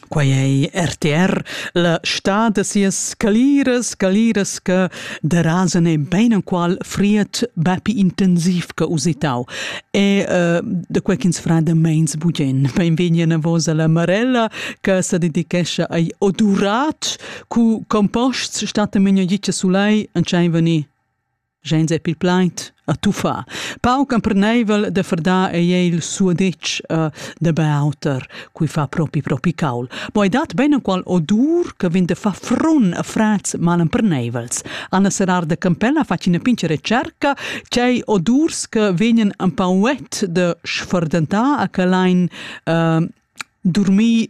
Quei ei rtr, la stad da sias scaliras, scaliras che derasan en beinenqual fried bepi intensiv che usitau. E uh, da quei ch'ins fa da meins bugen. Beinvegni anavos alla Marella che sa dedichescha ai odurat cu composts stattan menagitga sulei entschein venir. Gens è pil plaid a tuffar. Pauc emperneivel de ferdar ei il suadetsch uh, de Beauter, cui fa propi propi caul. Bo ei dat ben qual odur che vin de fa frun a frats malemperneivels. Anna Serrar de Campella fa cina pince recerca, cei odurs che vegnan un pauet de sferdentà a che lein uh, dormir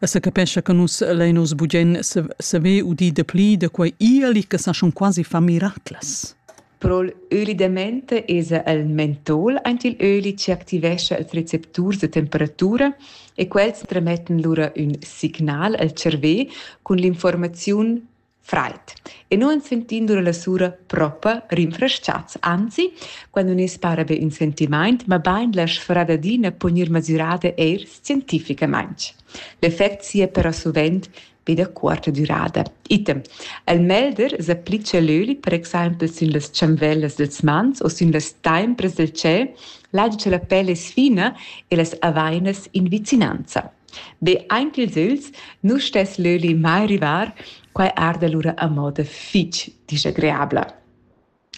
E sa capescha che nus lein oz bugen saver udir dapli da quei ieli che sa schon quasi fa miraclas. Pro'l öli da mente esa el mentol ant il öli chi activescha els recepturs da temperatura e quels trametten lura ün signal al cervè cun l'informaziun Fraid. E nu ans sentin dura la sura propa rinfrestchats, anzi, quando ün's para be ün sentimaint, mabain la sfradadina po gnir masürada eir scientificamaing. L'effect sia però suvent be da cuorta dürada. Item. El melder s'applicha l'öli per exaimpel sün las chanvellas dels mans o sün las taimpras del tschel, là cha la pel es fina e las avainas in vicinanza. Be aint ils ügls nu stess l'öli mai rivar, quai arda lura a moda fich disagreabla.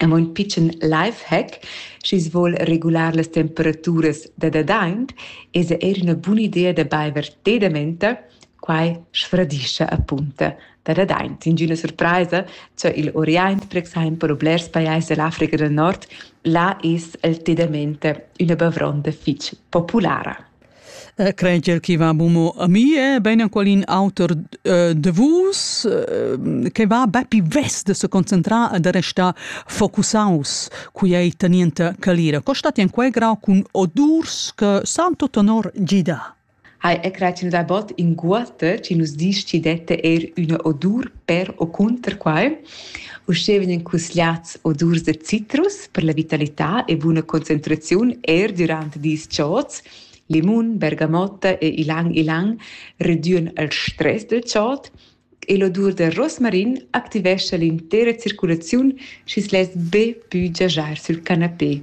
Amo ün pitschen lifehack, schi's voul regular las temperaturas da dadaint, esa eir üna buna idea da baiver té da menta, quai sfradischa apunta da dadaint. Ingüna surpraisa cha il Oriant per exaimpel u blers pajais da l'Africa del Nord, là es il té da menta üna bavronda fich populara. Creder chi va bumo a mi è bain in qualin auter da vus che va be pi vess da se concentrar e da restar focusaus quei tenienta calira. Co stat in quei grau cun odurs che san tot honor gidar? Hai e creatin da bot inguotta ci nus dis ci dette eir üna odur per o cunter quai. Uschè vegnan cusgliats odurs da citrus per la vitalità e buna concentraziun er durant dis chods. Limun, bergamotta e ilang ilang reducen il stress dal chod e l'odur da rosmarin activescha l'intera circulaziun schi's less be pü giajar sül canapé,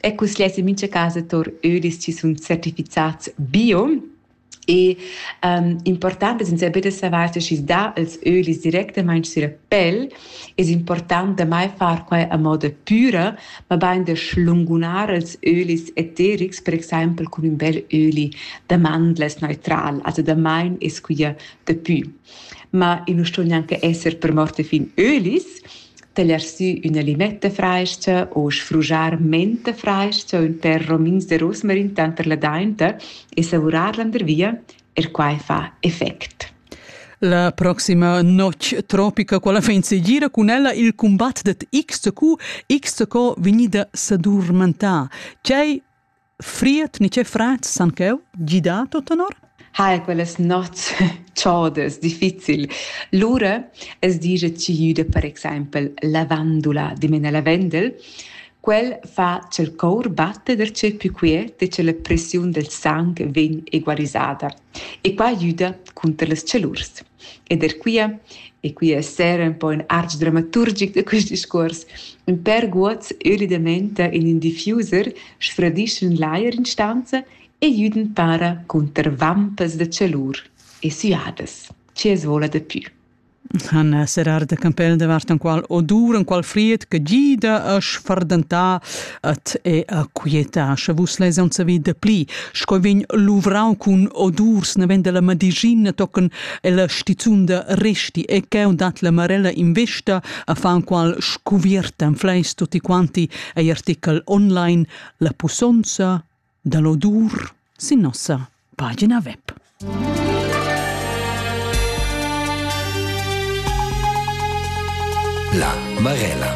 E cus less in mincha casa tour ödis chi sun certifichats bio. E um, important es insaiber da savair se schi's dà els ölis directamaing süra pel, es important da mai far quai a moda püra, ma bain da schlungunar els ölis eterics, per exaimpel cun ün bel öli da mandlas neutral, also da main es quia dapü. Ma i nu sto gnanca esser per morte fin ölis, teller sü üna limetta frais-cha o sfrugiar mente frais-cha ün pêr romins de rosmarin tanter la dainta e savurar landervia, er quai fa effect. La proxima notg tropica, quella fa in segira cun ella il combat det XQ, XQ vegnida sadurmentà. Tgei Fried ni che frats san cheu gidar tut tenor? Hai quellas nots chaudas, difficil. Lura es digia tschüda per exempel lavandula di mena lavendel. Quel fa ch'el cour batte der tschè pü quiet e che la pressiun del sang vegn egualisada. E quai güda cunter las chalurs. Ed er quia, e quia es saira ün po ün arch dramaturgic da quist discuors, ün pêr guots öli daventa in ün diffuser, sfradischan l'ajer in stanza e güdan para cunter vampas da chalur e süadas. Chi as voula dapü. han eh, serrar de campel davart enqual odur, enqual fried che gida a sfardentà et e a quietà, sche vus les on savi de pli, sco vegn luvrau cun odurs, ne vende la madigina tocken e la stizun de resti, e cheu dat la marella in vesta a fa enqual scuvierta en fleis tutti quanti, ei artikel online, la pussonza da l'odur sin nossa pagina web. La Marella.